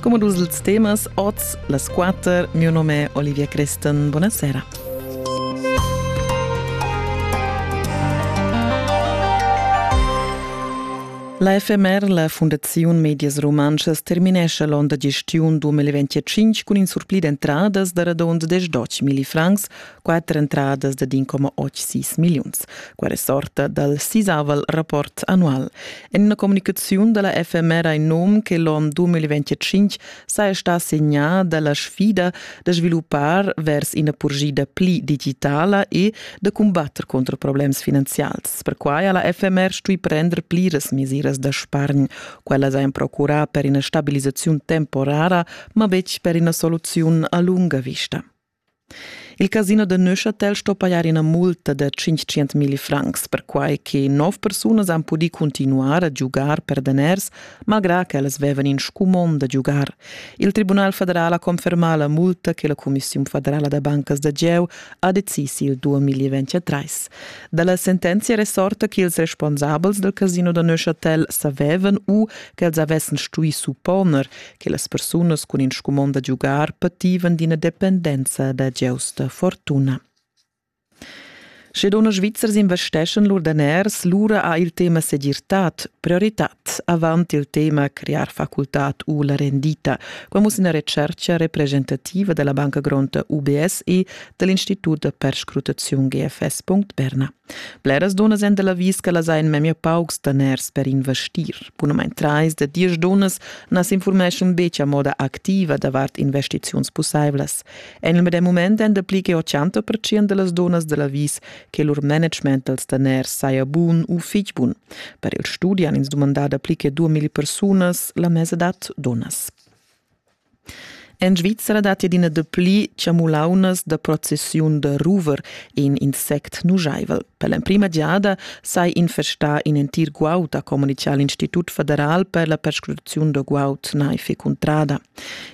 Come dus els temas oz las quatter, mio nome è Olivia Creston. Buonasera. La FMR, la Fundaziun Medias Rumantschas, terminescha l'onn da gestiun 2025 cun in surpli d'entradas da radund 10 million francs quatter entradas da din coma 8-6 milliuns, qua resorta dal sisaval rapport annual. En una comunicazione della FMR in nome che l'on 2025 saja sta segna dalla sfida da sviluppar vers una purgida pli digitala e da combattere contro problems finanzials. Perquai ha la FMR stui prender pliras mesiras da spargn, quella sajan procurà per una stabilizzazione temporara, ma betg per una soluzione a lunga vista. Il casino da Neuchâtel sto pajar ina multa da 500 milli francs, perquai che nov persunas han pudì cuntinuar a giugar per daners, malgrà ch'ellas vevan in scumond da giugar. Il Tribunal federal ha confermà la multa che la Cumissiun federala da bancas da gieu ha decis il 2023. Dalla sentenzia resorta che ils responsabels del casino da Neuchâtel savevan u ch'els avessen stui supponer che las persunas cun in scumond da giugar pativan d'ina dependenza da giausta fortuna. Sche dunna Svizzers investeschan lur daners, lura ha il tema segirtad prioritad avant il tema crear facultad u la rendita. Qua muss ina retscherca representativa della Banca Gronta UBSE dell'Istitut per Scrutaziun GFS. Berna. Bleras dunnas èn dalla vis ch'ellas ein memia paucs daners per investir. Bunamain trais da diesch dunnas na s'informeschan betg a moda activa davart investiziuns pussaivlas. En il medem mument èn dapli che 80 percent da las dunnas dalla vis che lur management dals daners saja bun u fitg bun. Per il studi han ins dumandà dapli che 2000 persunas la mesadad dunnas. En Svizra datti adina dapli chamulaunas da processiun da ruver, in insect nujaivel. Per l'emprima giada sai infestar in entir guaud, ha communitgà l'Institut federal per la perscrutaziun da guaud naiv e cuntrada.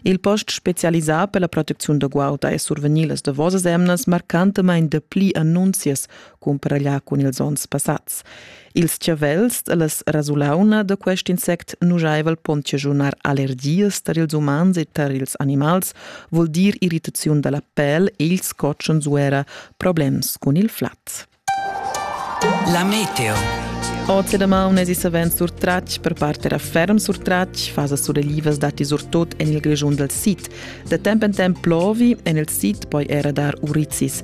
Il post spezialisà per la protecziun da guaud ha survegnì las davosas emnas marcantamain dapli annunzias cumparaglià cun ils onns passads. Ils chavels e las rasulauna da quest insect nujaivel pon chaschunar allergias tar ils umans e tar ils animals, vul dir irritaziun da la pel e ils cotschens u era problems cun il flat. La meteo. Oz e damaun es savens surtratg, per part era ferm surtratg, fasa sureglivas datti surtut en il Grischun dal sid. Da temp en temp plovi, en il sid poi era dar urizis.